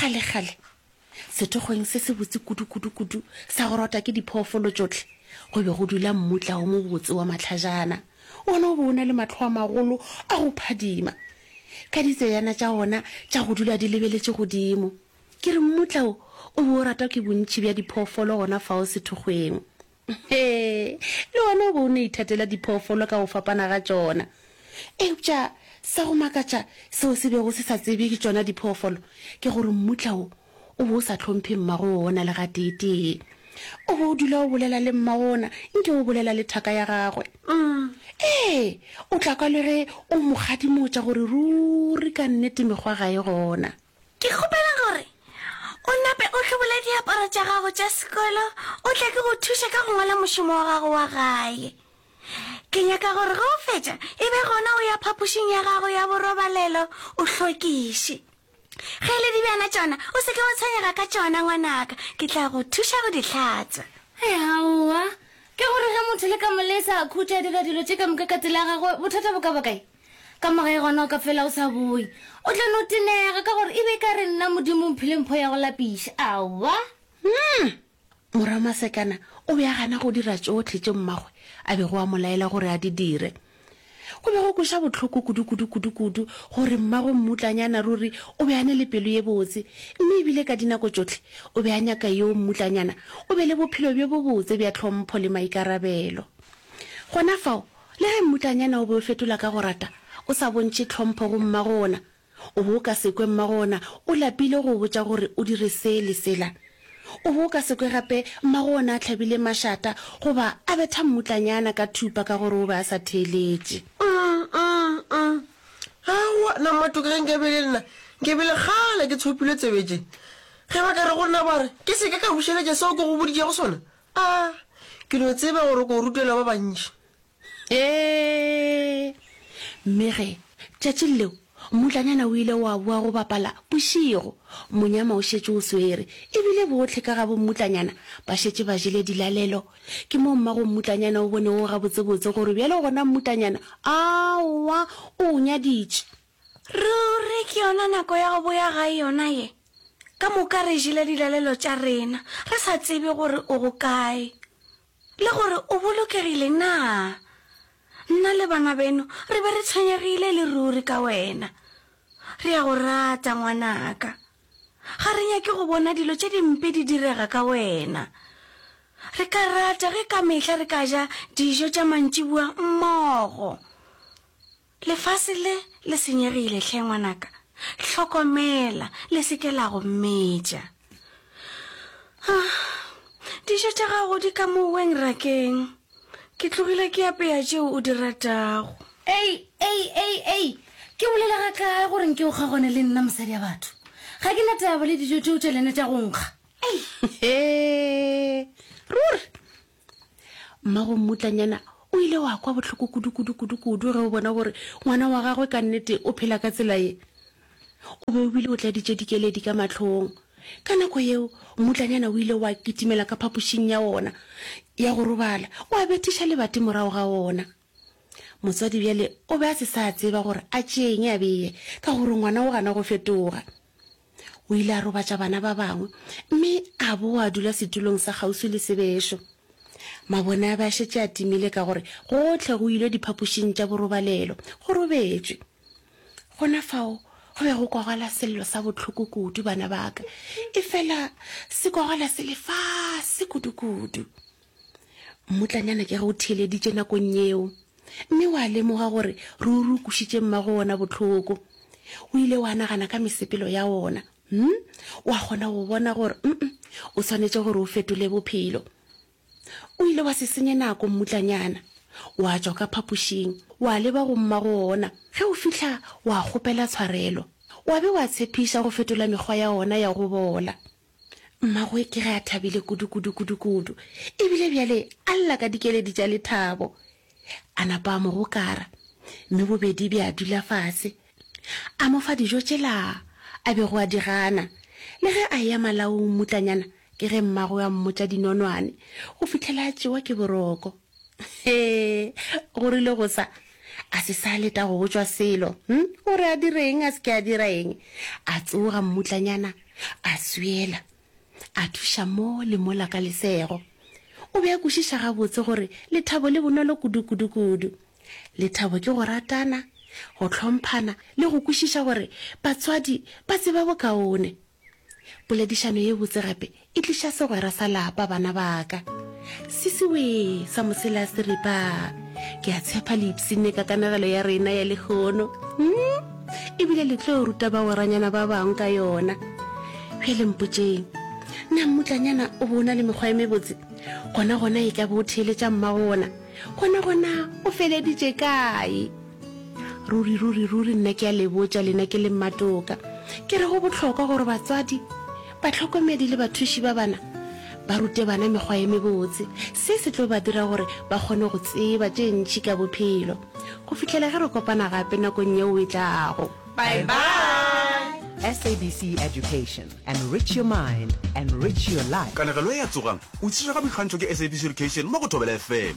kgalekgale sethokgweng se se botse kudu-kudu-kudu sa go rota ke diphoofolo tšohle go be go dula mmutla o mobotse wa matlhajana wona o be o na le matlho a magolo a go phadima ka ditseyana tša ona tša go dula di lebeletše godimo ke re mmutla o o be o ratwa ke bontši bja diphoofolo gona fao sethokgweng Hee, le wena o be o no ithatela diphoofolo ka go fapana ga tšona. Eupša sa go makatša seo se bego se sa tsebje ke tšona diphoofolo ke gore mmutla wo o be o sa hlomphe mmago wona le gateetee. O be o dula o bolela le mmago wona nke o bolela le thaka ya gagwe. Ee, o tla kwa le ge o mo kgadimotša gore ruri ka nnete mekgwa ga e gona. Ke kgopela gore o nape o hlobole diaparo tša gago tša sekolo o tle ke go thuše ka go ngwala mošomo wa gago wa gae. Ke nyaka gore ge o fetša e be gona o ya phapošing ya gago ya borobalelo o hlwekiše. Ge e le dibjana tšona o se ke wa tshwenyega ka tšona ngwanaka, ke tla go thuša go di hlatswa. Hei aowa, ke gore ge motho le ka mo lesa a khutša a dira dilo tše ka moka ka tsela ya gagwe bothata bo ka ba kae? Ka mo gae gona o ka fela o sa boyi. O tla no tenega ka gore e be e ka re nna Modimo mphile mpho ya go lapiša. Aowa! Umm! Morwa Masekana o be a gana go dira tšohle tše mmagwe a bego a mo laela gore a di dire. Go be go kweša bohloko kudu-kudu kudu-kudu gore mmagwe mmutlanyana ruri o be a ne le pelo ye botse, mme e bile ka dinako tšohle o be a nyaka yoo mmutlanyana o be le bophelo bjo bobotse bja tlhompho le maikarabelo. Gona fao Le ge mmutlanyana o be o fetola ka go rata, o sa bontšhe tlhompho go mmago ona, o be o ka se kwe mmago ona o lapile go o botša gore o dire se le sela. O be o ka se kwe gape mmago ona a tlhabile mašata goba a betha mmutlanyana ka thupa ka gore o be a sa theeletše. Um-um-um! Aowa, na matoka ge nkabe e le nna, nkabe e le kgale ke tshopilwe tsebe tše. Ge ba ka re go nna ba re ke se ke ka bušeletša seo ke go boditšego sona, A ke no tseba gore ko rutela ba bantši? Ee! Mme ge, tšatšing leo, mmutlanyana o ile wa boa go bapala bošego, monyama o šetše o swere, e bile bohle ka ga bommutlanyana ba šetše ba jele dilalelo, ke moo mmagommutlanyana o bonego gabotsebotse gore bjale gona mmutlanyana a wa o o nyaditše. Ruri ke yona nako ya go boya gae yona ye? Ka moka re jele dilalelo tša rena re sa tsebe gore o go kae le gore o bolokegile na. Nna le bana beno re be re tshwenyegile e le ruri ka wena. Re a go rata, ngwanaka. Ga re nyake go bona dilo tše dimpe di direga ka wena. Re ka rata ge ka mehla re ka ja dijo tša mantšiboa mmogo. Lefase le le senyegile hle ngwanaka, hlokomela le se ke la go metša. Ah, dijo tša gago di ka mo weng rakeng, ke tlogile ke apea tšeo o di ratago. Ei, ei, ei, ei, ke bolela ga kae gore nke o kgaogane le nna mosadi ya batho? Ga ke na taba le dijo tšeo tša lena tša go nkga. Ei, he, ruri, Mmagommutlanyana o ile wa kwa bohloko kudu-kudu-kudu-kudu ge o bona gore ngwana wa gagwe ka nnete o phela ka tsela ye. O be o bile o tladitše dikeledi ka mahlong. Ka nako yeo, mmutlanyana o ile wa kitimela ka phapošing ya wona ya go robala, wa bethiša lebati morago ga wona. Motswadi bjale o be a se sa tseba gore a tšeeng a bee ka gore ngwana o gana go fetoga. O ile a robatša bana ba bangwe mme a boa dula setulong sa kgauswi le sebešo. Mabone a be a šetše a timile ka gore gohle go ilwe diphapošing tša borobalelo go robetšwe. Gona fao go be go kwagala sello sa bohloko kudu, bana ba ka, efela se kwagala se le fase kudukudu. Mmutlanyana ke re o theeleditše nakong yeo, mme wa lemoga gore ruri o kušitše mmago wona bohloko. O ile wa nagana ka mesepelo ya wona, hm, wa kgona go bona gore mm, o swanetše gore o fetole bophelo. O ile wa se senye nako, mmutlanyana. Wa tšwa ka phapošing, wa leba go mmago wona. Ge o fihla, wa kgopela tshwarelo. Wa be wa tshepiša go fetola mekgwa ya wona ya go bola. Mmagwe ke ge a thabile kudu-kudu-kudu-kudu, e bile bjale a lla ka dikeledi tša lethabo. A napa a mo gokara, mme bobedi bja dula fase. A mo fa dijo tšela a bego a di gana. Le ge a eya malaong mmutlanyana, ke ge mmagwe a mmotša dinonwane go fihlela a tšewa ke boroko. He, go rile go sa, a se sa leta go botšwa selo, hm, o re a dire eng, a se ke a dira eng. A tsoga mmutlanyana, a swela, a thuša mo le mola ka lesego. O be a kwešiša gabotse gore lethabo le bonolo kudu-kudu-kudu. Lethabo ke go ratana, go hlomphana le go kwešiša gore batswadi ba tseba bokaone. Poledišano ye botse gape e tliša segwera sa lapa, bana ba ka. Sisi wee, sa mosela a seripa. Ke a tshepa le ipsine ka kanegelo ya rena ya lehono, umm, e bile le tlo ruta bagweranyana ba bangwe ka yona. Bjale mpotšeng, na mmutlanyana o be o na le mekgwa e mebotse? Gona-gona e ka be o theeletša mmagona. Gona-gona o feleditše kae? Ruri, ruri, ruri nna ke a le botša lena ke le mmatoka, ke re go bohlokwa gore batswadi, batlhokomedi le bathuši ba bana ba rute bana mekgwa ye mebotse. Se se tlo ba dira gore ba kgone go tseba tše ntši ka bophelo. Go fihlela ge re kopana gape nakong yeo e tlago. Bye bye! SABC Education, enrich your mind, enrich your life. Kanegelo e a tsogang, o itshirega boikgantšho ke SABC Education mo go Thobela FM.